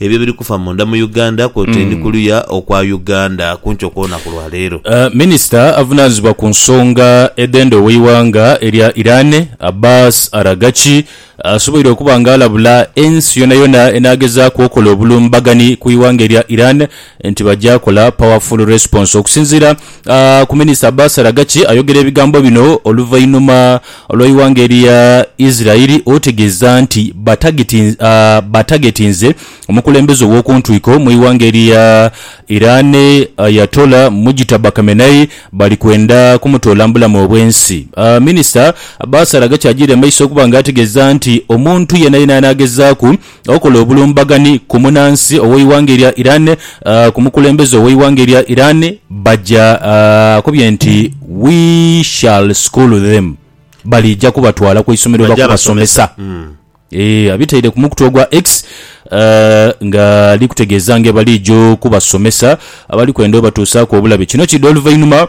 ebyo ebiri kufa munda mu Uganda kwotaini kuluya okwa Uganda kunkyo kwonaku lwa leero. Minisita avunaanizibwa ku nsonga edh'enda ow'eighanga erya Iran, Abbas Araghchi asoboire okuba nga alabula ensi yonayona enaagezaaku okola obulumbaganhi ku ighanga erya Iran, nti baja kola powerful response okusinziira ku minister Abbas Aragaki ayogera ebigambo bino oluvainhuma lweighanga erya Israel otegeeza nti batagetinze omukulembeze owokuntwiko mwighanga erya Iran Ayatollah Mujtaba Khamenei bali kwenda kumutoola mubulamu obwensi. Minister Abbas Aragaki ajiire mumaiso okubanga ategeeza nti omuntu yenayena anagezaaku okola obulumbaganhi ku munansi ow'eighanga erya Iran ku mukulembeze ow'eighanga erya Iran baja, akobye nti We shall school them, baliija kubatwala ku isomero Baja bakubasomesa. basomesa. Eeh, abitaire ku mukutu ogwa X nga ali kutegeeza ng'ebaliija okubasomesa abali kwenda obatuusaaku obulabe. Kino kiidha oluvainhuma.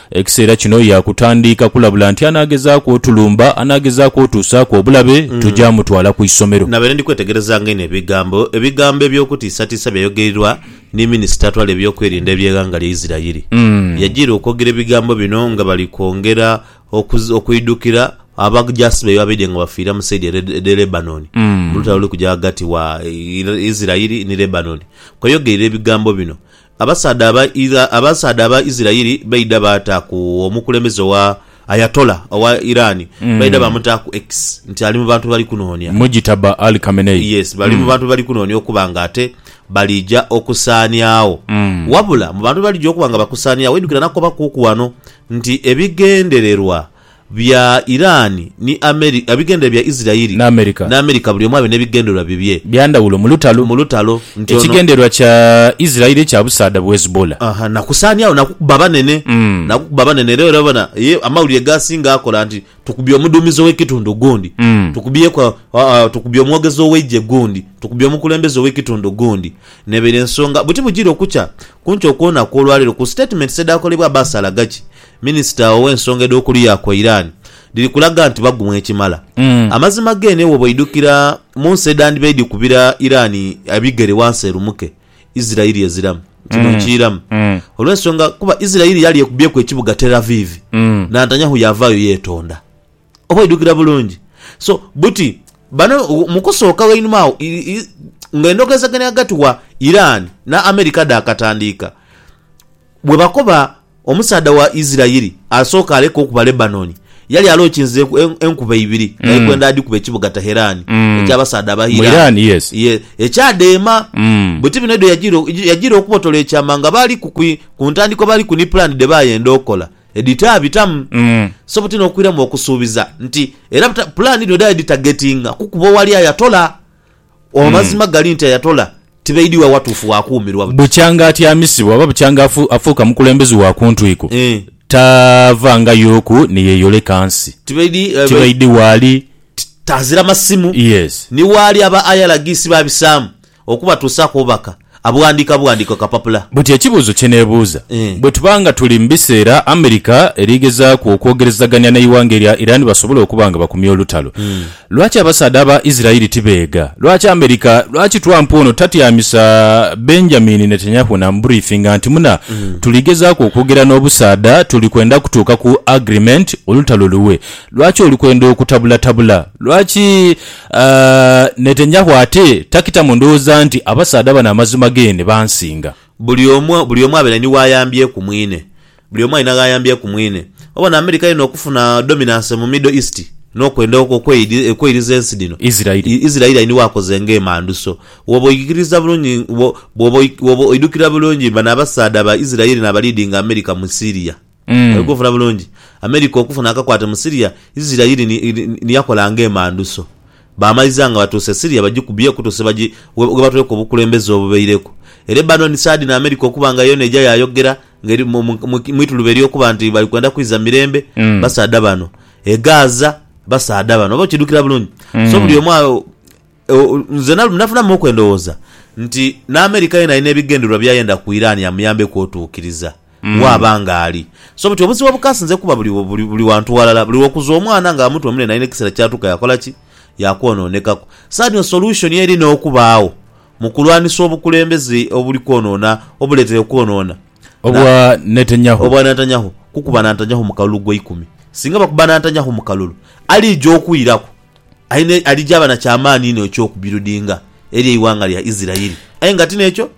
Ekiseera kino yaakutandiika kulabula nti anaagezaaku otulumba, anaagezaaku otuusaaku obulabe, tugya mutwala ku isomero. Nabaire ndi kwetegerezanga inho ebigambo ebigambo eby'okutiisatiisa byayogeirirwa ni minisita atwala eby'okwerinda eby'eghanga lya Isirairi. Yajiira okwogera ebigambo bino nga bali kwongera okwidhukira abajaasi baibwe abaidhye nga bafiira mu saidi ere edh'e Lebanoni mu lutalo oluli kugya ghagati wa Isirairi ni Lebanoni. Kweyogeirira ebigambo bino Abasaadha aba Ira, abasaadha aba Isirairi baidha baataaku omukulembeze owa Ayatollah owa Iran, baidha baamutaaku ex nti ali mu bantu be bali kunoonia. Mujitaba Ali Khamenei. Yes, bali mu bantu be bali kunoonia okuba nga ate balija okusaaniagho. Wabula mu bantu be balija okuba nga bakusaaniagho, oidhukira nakobakuuku ghano nti ebigendererwa. bya Iran ni America, ebigendererwa bya Isirairi ni America buli omu abe n'ebigendererwa bibye bya ndhawulo mu lutalo, mu lutalo nti ono. Ekigendererwa kya Isirairi kya busaadha bu Hezbollah. Aha, na kusaaniagho na kukuba banene, na kukuba banene. Era olabona ye amawulire g'asinga akola nti tukubye omudhuumizi ow'ekitundu gundi, tukubyeku tukubye omwogezi ow'eigye gundi, tukubye omukulembeze ow'ekitundu gundi. N'ebaire ensonga buti bujiire okukya ku nkyo kwona kw'olwaleero ku sitatimenti edhaakolebwa Abbas Araghchi Minisita ow'ensonga edh'okuluya kwa Iran dhiri kulaga nti bagumwa ekimala. Amazima geene bwoba oidhukira mu nsi edhandiba edhikubira Iran ebigere wansi erumuke, Isirairi eziramu. Kino nkiiramu olw'ensonga kuba Isirairi yali ekubyeku ekibuga Tel Aviv, Nantanyahu yaavaayo yeetonda. Oba oidhukira bulungi? So buti bano mu kusooka ghainuma agho nga endhogezaganya ghagati gha Iran ni America dhaakatandiika, bwe bakoba omusaadha wa Isiraeli asooka aleka okuba Lebanon yali alookinze enkuba ibiri nga ekwenda adhikube ekibuga Tehran eky'abasaadha Abairan ekyadheema. Buti bino edho yajiira okubotola ekyama nga baaliku ku ntandikwa baaliku ni pulaani dhe baayenda okola. edhitaabitamu. So buti n'okwiramu okusuubiza nti era pulaani dhino edhali dhitagetinga kukuba owali Ayatollah. Amazima gali nti Ayatollah tibaidhi wa watuufu wa kuumirwa buti. Bukyanga atyamisibwa oba bukyanga afuuka mukulembeze wa ku ntwiko, taavangayoku ni yeeyoleka nsi. Tibaidhi waali. Taazira masimu. Ni waali aba IRGC baabisaamu. Okubatuusaaku obubaka abughandiika bughandiike ku kapapula. Buti ekibuuzo kye neebuuza, bwe tuba nga tuli mu biseera America eri gezaaku okwogerezagania n'eighanga erya Iran basobole okuba nga bakumye olutalo, lwaki abasaadha aba Israel tibeegha? Lwaki America, lwaki Trump ono tatyamisa Benjamin Netanyahu n'amuburiifinga nti muna, tuli gezaaku okwogera n'obusaadha, tuli kwenda kutuuka ku agreement, olutalo luwe? Lwaki oli kwenda okutabulatabula? Lwaki. Netenyahu ate takita mu ndhooza nti abasaadha bano amazima geene bansinga. Buli omu buli omu abeere ni w'ayambyeku mwine. Buli omu alina gh'ayambyeku mwine. Obona Amerika yona okufuna dominance mu Middle East n'okwenda okweiriza ensi dhino, Israeli ali ni w'akoze ng'emanduso. Bw'oba oikiriza bulungi, bw'oba oidhukira bulungi bano abasaadha ba Israeli n'abaliidinga Amerika mu Syria. Oli kunfuna bulungi? America okufuna akakwate mu Syria, Isiraeli ni, ni, ni yakola ng'emanduso. Baamaliza nga batuuse e Syria, bagikubye okutuusa ghebagi, ghe, ghe batweka obukulembeze obubaireku. E Lebanon, Saadi ni America okuba nga yoona eja yaayogera, ng'eri mu, mu, mu, mu ituluba ery'okuba nti bali kwenda kwidha mirembe, basaadha bano. E Gaza, basaadha bano. Oba okiidhukira bulungi? So buli omu a, Nzena lumu nafunamu okwendhowooza nti n'America yena alina ebigendererwa by'ayenda ku Iran amuyambeku otuukiriza waaba nga ali. So buti obuzibu obukasinze kuba buli wantu ghalala, buli lw'okuza omwana nga amuta omunene alina ekiseera ky'atuuka yaakola ki? Yaakwonoonekaku. Saha dhino solution eri n'okubaagho mu kulwanisa obukulembeze obuli kwonoona, obuleetere okwonoona. Obwa Netanyahu. Obwa Netanyahu. Kukuba Nantanyahu mu kalulu gwa ikumi. Singa bakuba Nantanyahu mu kalulu, aliija okwiraku Aye alijaaba na kya maani inho eky'okubirudinga eri eighanga lya Isiraeli. Aye nga ti n'ekyo,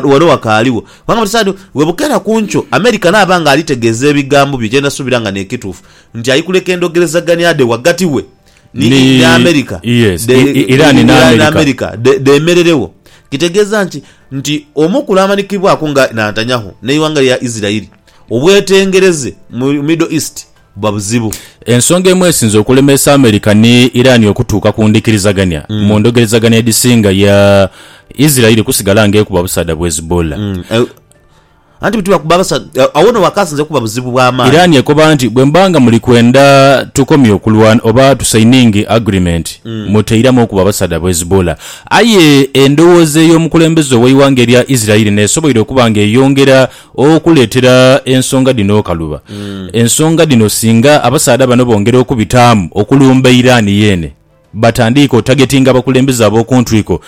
wano wakaaligho. Kubanga buli saha dhona bwe bukeera ku nkyo, America naaba nga ali tegeeza ebigambo bye, kye ndha suubira nga n'ekituufu nti aikuleka endhogerezagania dhe ghagati we ni America dheemereregho. Kitegeeza ki? Nti omu ku lwamanikibwaku nga Nantanyahu n'eighanga lya Isiraeli obwetengereze mu Middle East. buba buzibu. Ensonga emu esinze okulemeesa America ni Iran okutuuka ku ndhikirizagania mu ndhogerezagania edhisinga ya Israeli kusigala nga ekuba busaadha bu Hezbollah. Anti bwetugha kuba basaadha, agho no wakasinze okuba buzibu bwa maani. Iran ekoba nti, bwe muba nga muli kwenda tukomye okulwana oba tusaininge agreement, muteiramu okuba basaadha bu Hezbollah. Aye endhowooza ey'omukulembeze ow'eighanga erya Israeli n'esoboire okuba nga eyongera Okuleetera ensonga dhino okaluba, ensonga dhino singa abasaadha bano bongera okubitaamu okulumba Iran yeene, batandiike otagetinga abakulembeze ab'oku ntwiko,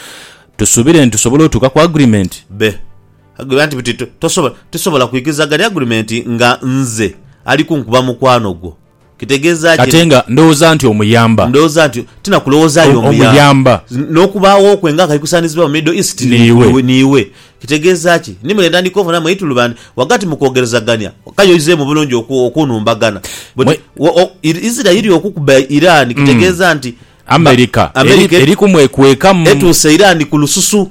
tusuubire nti tusobola otuuka ku agreement? Be. Agriba nti buti, Tosobola, tisobola kwikiriza ghali agreement nga nze ali kunkuba mukwano gwo. Kitegeeza ki? Ate nga ndhowooza nti omuyamba. Ndhowooza nti ti na kulowooza ali omuyamba. N'okubaawo kwe nga kaikusanizibwa mu Middle East niiwe. Kitegeeza ki? Ni mule ntandika ofunamu eitulubandi ghagati mu kwogerezagania. Kale oizeemu bulungi okunhumbagana. Buti Isiraeli okukuba Iran kitegeeza nti. Amerika eri kumwekwekamu. Etuuse Iran ku lususu.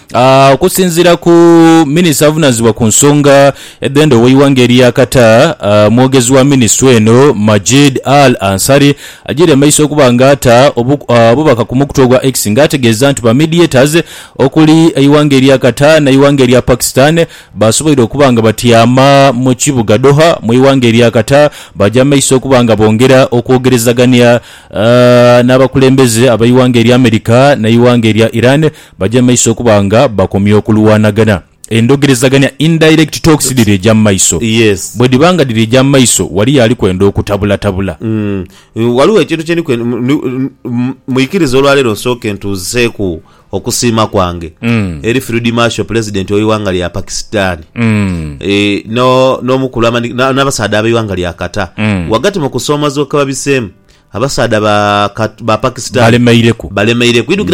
Okusinziira ku minisita avunanizibwa ku nsonga edhenda oweighanga erya Qatar, mwogezi wa minisitule eno Majid Al Ansari ajiire mumaiso okuba nga ata obubaka ku mukutu ogwa X nga ategeeza nti ba mediators okuli eighanga erya Qatar n'eighanga erya Pakistan basoboire okuba nga batyama mu kibuga Doha mweighanga erya Qatar baja mumaiso okuba nga bongera okwogerezagania n'abakulembeze abeighanga erya America n'eighanga erya Iran Baja mu maiso okuba nga bakomya okulwanagana. Endhogerezagania, indirect talks, dhiri eja mu maiso. Bwedhiba nga dhiri eja mu maiso, waliyo ali kwenda okutabulatabula. Ghaligho ekintu kye ndi kwenda, mwikirize olwaleero nsooke ntuuziseeku okusiima kwange eri Field Marshal Pulezidenti w'eighanga lya Pakisitani n'omukulu n'abasaadha ab'eighanga lya Qatar ghagati mu kusoomoozebwa kwe babiseemu. Abasaadha ba Pakisitani balemeireku.